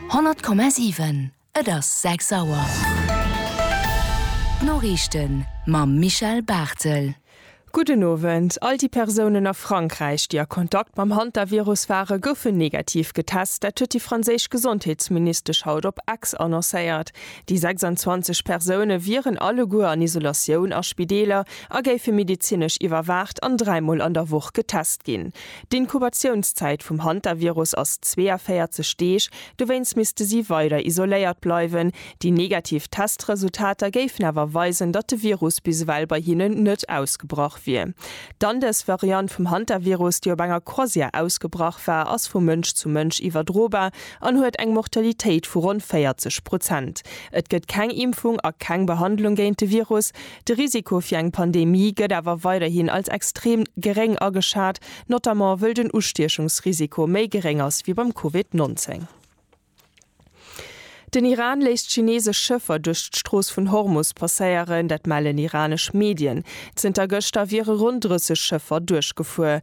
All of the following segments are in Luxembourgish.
100,7 Et ass 6 Auer. D'Noriichten mam Michel Barthel. Gudden Owend. All déi Persounen a Frankräich, déi a Kontakt mam Hantavirus waren, goufen negativ getest. Dat huet déi franséisch Gesondheetsministesch haut op X annoncéiert. Déi 26 Persoune wieren alleguer an Isolatioun a Spideeler a géife medezinesch iwwerwaacht an dräimol an der Woch getest ginn. D'Inkubatiounszäit vum Hantavirus ass 42 Deeg, dowéinst misste si weider isoléiert bleiwen. Déi negativ Testresultater géifen awer weisen, datt de Virus bis ewell bei hinnen net ausgebrach wier. D'Andes-Variant vum Hantavirus, déi op enger Croisière ausgebrach war, ass vu Mënsch zu Mënsch iwwerdrobar an huet eng Mortalitéit vu ronn 40 Prozent. Et gëtt keng Impfung a keng Behandlung géint de Virus. De Risiko fir eng Pandemie gëtt awer weiderhin als extrem geréng ageschat, notamment wëll den Ustiechungsrisiko méi geréng ass wéi beim Covid 19. Den Iran léisst chineesesch Schëffer duerch d'Strooss vun Hormus passéieren, dat mellen iranesch Medien. Zënter gëschter wiere ronn 30 Schëffer duerchgefuer.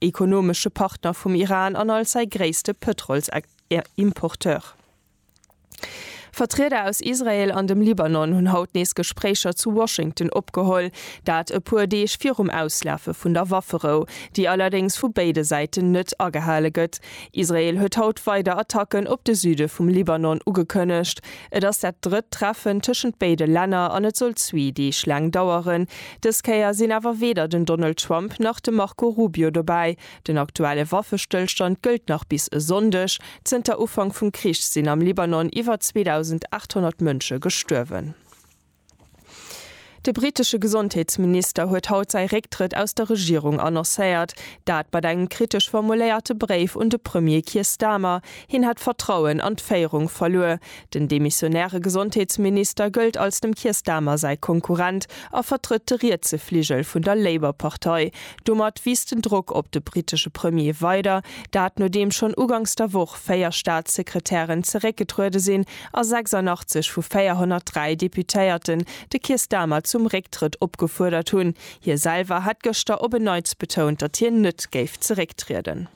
ekonomesche Partner vum Iran an als säi gréisste Pëtrolsimporteur. Vertrieder aus Israel an dem Libanon hunn haut nees Gespréicher zu Washington opgeholl, dat e puer Deeg virum Auslafe vun der Wafferou, déi allerdéngs vu béide Säiten net agehale gëtt. Israel huet haut weider Attacken op de Süde vum Libanon ugekënnegt. Et ass dat drëtt Treffen tëschent béide Länner an et soll zwee Deeg laang daueren. Dës Kéier sinn awer weder den Donald Trump nach de Marco Rubio dobäi. Den aktuelle Waffestëllstand gëllt nach bis e Sonndeg. Zënter Ufank vum Krich sinn am Libanon iwwer 2.800 Mënsche gestuerwen. De brittesche Gesondheetsminister huet haut säi Récktrëtt aus der Regierung annoncéiert. Dat mat engem kritesch formuléierte Bréif un de Premier Keir Starmer. Hien hätt Vertrauen an d'Féierung verluer. Den demissionäre Gesondheetsminister gëllt als dem Keir Starmer säi Konkurrent a vertrëtt de rietse Fligel vun der Labour-Partei. Domat wiisst den Drock op de brittesche Premier weider, dat nodeem schonn uganks der Woch 4 Staatssekretären zeréckgetruede sinn a 86 vu 403 Deputéierten de Keir Starmer zum Récktrëtt opgefuerdert hunn. Hie selwer hat gëschter op en Neits betount, datt hien net géif zerécktrieden.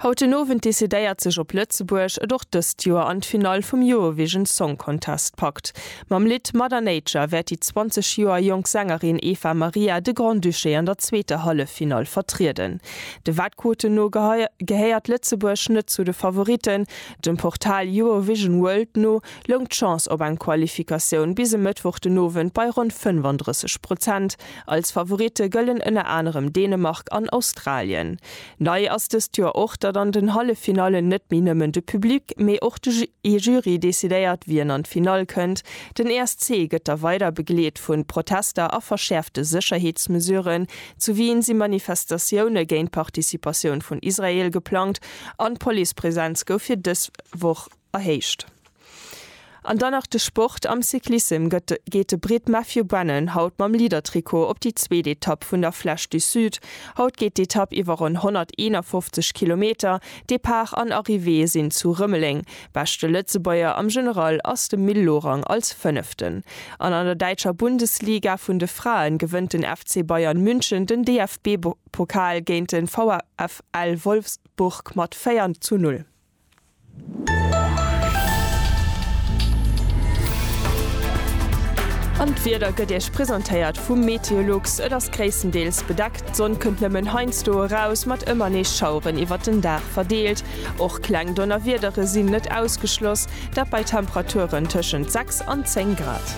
Haut den Owend decidéiert sech op Lëtzebuerg et och dëst Joer an d'Finall vum Eurovision Song Contest packt. Mam Lidd Mother Nature wäert déi 20 Joer jonk Sängerin Eva Maria de Grand-Duché an der zweeter Halleffinall vertrieden. De Wettquoten no gehéiert Lëtzebuerg net zu de Favoritten. Dem Portal Eurovision World no loung d'Chance op eng Qualifikatioun bis e Mëttwoch den Owend bei ronn 35 Prozent. Als Favoritte gëllen ënner anerem Dänemark an Australien. Nei ass dëst Joer och, datt an den Halleffinallen net méi nëmmen de Public, mee och de Jury decidéiert, wien an d'Finall kënnt. Den ESC gëtt da weider begleet vu Protester a verschäerfte Sécherheetsmesuren. Zu Wien si Manifestatioune géint d'Participatioun vun Israel geplangt an d'Policepresenz gouf fir dës Woch Erhéicht. An dann nach de Sport, Am Cyclissem gëtt geet de Britt Matthew Brennan haut mam Leader-Trikot op déi zweet Etapp vun der Flèche du Sud. Haut geet d'Etapp iwwer ronn 151 Kilometer, Depart an Arrivée sinn zu Rëmeleng. Beschte Lëtzebuerger am General ass de Mil Lorang als Fënneften. An an der däitscher Bundesliga vun de Fraen gewënnt den FC Bayern München den DFB-Pokal géint de VfL Wolfsburg mat 4 zu 0. An d'Wieder gëtt Iech presentéiert vum Meteolux. Et ass gréisstendeels bedeckt, d'Sonn kënnt nëmmen heiansdo eraus, mat ëmmer nees Schaueren iwwert den Dag verdeelt. Och kleng Donnerwiedere sinn net ausgeschloss, dat bei Temperaturen tëschent 6 an 10 Grad.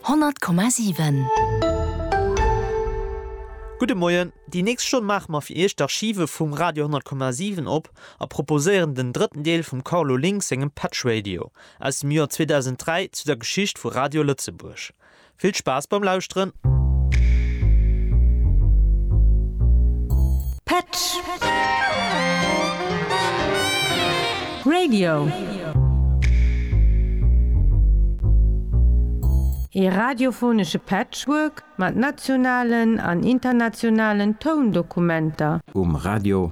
100,7. Gudde Moien, déi nächst Stonn maache mer fir Iech d'Archive vum Radio 100,7 op a proposéieren den drëtten Deel vum Carlo Link sengem Patch Radio aus dem Joer 2003 zu der Geschicht vu Radio Lëtzebuerg. Vill Spaass beim Lauschteren! Patch. Radio! Ee radiophonesche Patchwork mat nationalen an internationalen Toundokumenter. Um Radio!